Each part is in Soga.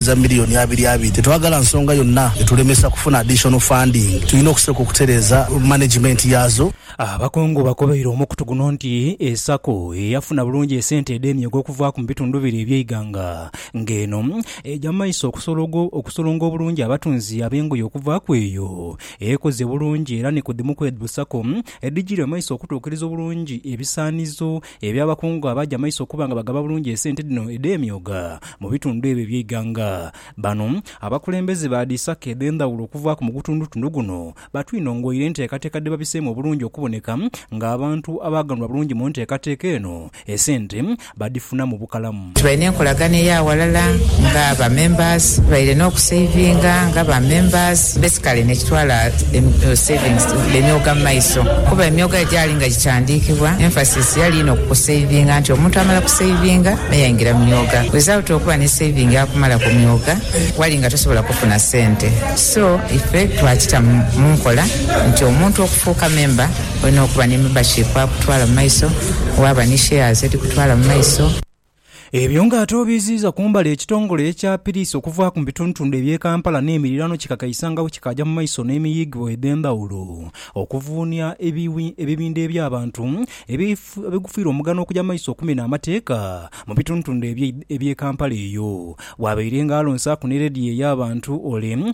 za million abiri abiri. Tetwagala nsonga yonna etulemesa kufuna additional funding. Tulina okusooka okutereeza management yaazo. Abakungu bakobeire omukutu guno nti e sacco eyafuna bulungi esente edh'emyooga okuvaaku mu bitundu biri eby'eighanga nga eno eja mu maiso okusolonga obulungi abatunzi ab'engoye okuvaaku eyo ekoze bulungi era ni ku dhimu kw'edho sacco edhijiire mu maiso okutuukiriza obulungi ebisaanizo Eby'abakungu abaaja amaiso okuba nga bagaba bulungi esente dhino edh'emyooga mu bitundu ebyo eby'eighanga. Bano abakulembeze ba dhi sacco edh'endhawulo okuvaaku mu gutundutundu guno batwinongoire enteekateeka dhe babiseemu obulungi okuboneka ng'abantu abaaganhulwa bulungi mu nteekateeka eno esente badhifuna mu bukalamu. Tubaire n'enkolagana eya ghalala nga ba members, tubaire n'okusavinga nga ba members, basically nekitwala savings emyoga mu maiso kuba emyoga egyali nga gikyandiikibwa emphasis yali inho ku kusavinga nti omuntu amala kusavinga me yaingira mu myoga without okuba ni saving akumala ku myoga wali nga tosobola kufuna sente so ife twakita mu nkola nti omuntu okufuuka member Olina okuba ni membership akutwala mu maiso, waaba ni shares edhikutwala mu maiso. Ebyo nga ate obiiziiza kumbali ekitongole ekya piriisi okuvaaku mu bitundutundu eby'e Kampala n'emiriraano kikakaisangawo kikaaja mu maiso n'emiyiigibwa edh'endhawulo okuvuunia ebibindho eby'abantu ebigufiira omugano okuja mu maiso okumena amateeka mu bitundutundu eby'e Kampala eyo bw'abaire nga alonsaaku ni leediyo ey'abantu ole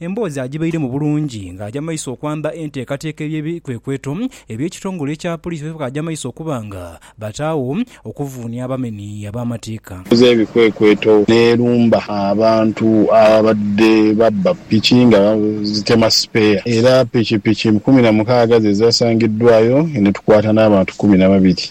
Emboozi agibairemu bulungi ng'aja maiso okwamba enteekateeka ey'ebikwekweto eby'ekitongole ekya poliisi bye baaja maiso okuba nga bataagho okuvuunia abamenhi ab'amateeka. Ekoze ebikwekweto n'erumba abantu ababadde babba piki nga zitema sipeeya era pikipiki kumi na mukaaga ze zaasangiddwaayo ne tukwata n'abantu kumi na babiri.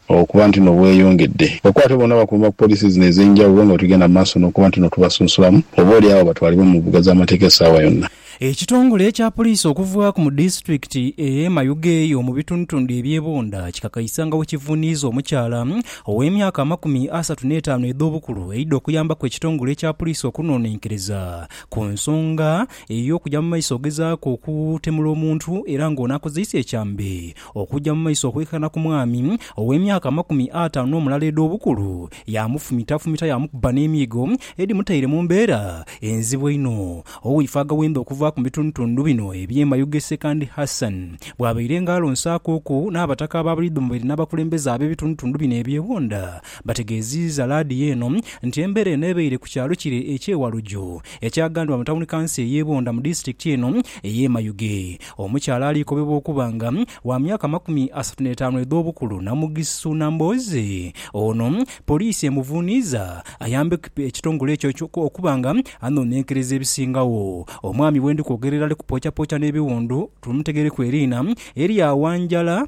Okuba ntino bweyongedde, abakwate bonna bakuuma ku poliisi zino ez'enjawulo nga bwetugenda mu maaso n'okuba ntino tubasunsulamu oba oli agho batwalibwe mu mbuga z'amateeka essaawa yonna. Ekitongole ekya poliisi okuva ku mu disitulikiti eye Mayuge eyo mu bitundutundu ebye Bunda kikakaisa nga bwekivuniiza omukyala ow'emyaka amakumi asatu n'etaanu edh'obukulu eidha okuyambaku ekitongole ekya poliisi okunonenkereza ku nsonga ey'okugya mu maiso ogezaaku okutemula omuntu era nga ono akozeise ekyambe Okugya mu maiso okwekana ku mwami ow'emyaka amakumi ataanu n'omulala edh'obukulu, yaamufumitafumita yaamukuba n'emiigo edhimutaire mu mbeera enzibu einho. Owaife agaghenda okuvaaku mu bitundutundu bino eby'e Mayuge Sekandi Hassan bwabaire nga alonsaakuuku n'abataka ab'abaidhomoberi n'abakulembeze ab'ebitundutundu bino ebyewunda bategeeziiza laadiyo eno nti embeera eno ebaire ku kyalo kire eky'e Waluju ekyagandibwa mu tawuni kanso ey'e Bunda mu disitulikiti eno ey'e Mayuge. Omukyala aliikobebwa okuba nga wa myaka amakumi asatu n'etaanu edh'obukulu Namugisu Nambooze. Ono poliisi emuvuuniiza ayambe ekitongole ekyo okuba nga anoonenkereza ebisingagho. Omwami bwendi kwogerera ali kupoocapooca n'ebiwundu, tumutegereku eriina erya Wanjala.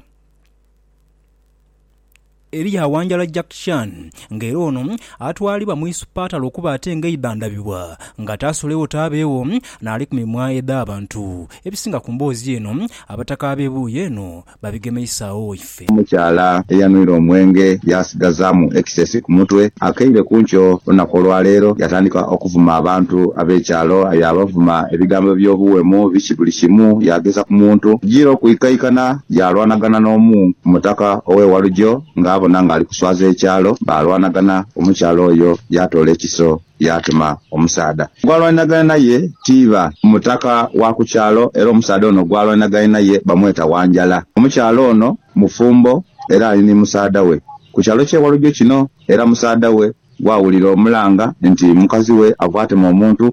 Eriyo awanjala Jack Chan nga era ono atwalibwa mu isupatale okuba ate nga eidha ndhabibwa nga taasolegho taabeegho n'ali ku mimwa edh'abantu. Ebisinga ku mboozi eno abataka ab'ebuuyi eno babigemeisaagho waife. Omukyala eyanwire omwenge yaasigazaamu ekisesi ku mutwe akaire ku nkyo olunaku olwaleero yaatandika okuvuma abantu ab'ekyalo. Yaabavuma ebigambo eby'obuwemu biki buli kimu, yaageza ku muntu kujiira okwikaikana Yaalwanagana n'omu ku mutaka ow'e Walugyo ng'abona ng'ali kuswaza ekyalo. Baalwanagana, omukyala oyo yaatoola ekiso yaatuma omusaadha gw'alwaniragaine n'aye tiiba mutaka wa ku kyalo, era omusaadha ono gw'alwaniragaine n'aye bamweta Wanjala. Omukyala ono mufumbo era ali ni musaadha we ku kyalo ky'e Walugyo kino, era musaadha we bw'awulira omulanga nti mukazi we ava atema omuntu,